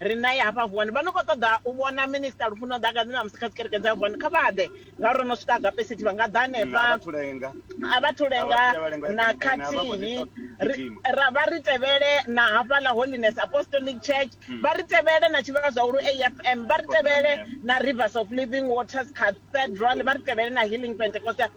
ri nae hafha vuwani vha no khou ṱoḓa u vhona minista lufuno ḓakani na musi kha dzikereke dza vuwani kha vha ḓe ngauri ro no swika agapesiti vha nga ḓa hanefha a vha thulenga na khathihi ra vha ri tevhele na hafhaḽa holiness apostolic church hmm. vha ri tevhele na tshivhalo zwa ulu afm vha ri tevhele na rivers of living waters cathedral vha ri tevhele na healing pentecostal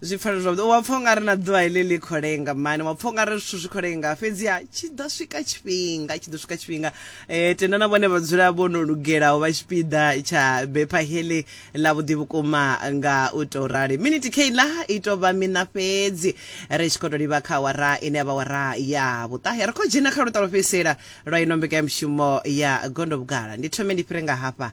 zwi pfala zwavhuḓi wa pfha ungari na ḓuvha heḽi ḽi khou lenga mani wa pfha ungari zwithu zwi khou lenga fhedziha tshi ḓo swika tshifhinga tshi ḓo swika tshifhinga um tenda na vhone vha dzula vho no lugelaho vha tshipiḓa tsha bepha heḽi ḽa vhuḓi vhukuma nga u tou rali miniti keiḽa i tou vha mina fhedzi ri tshi khou tou livha kha wara ine ya vha wara ya vhuṱahe ri khou dzhena kha luṱa lwo fhedzisela lwa ino mbekanyamushumo ya gondo vhugala ndi thome ndi fhire nga hafha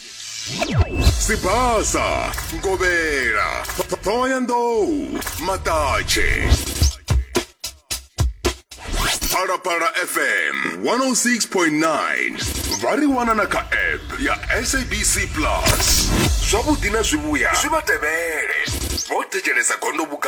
sibasa nkovhela thohoyandou maṱatshe phalaphala fm 106.9 vha ri wana na kha app ya sabc plus zwavhuḓi na zwivhuya zwi vha tevhele vho thetshelesa gondo vhuka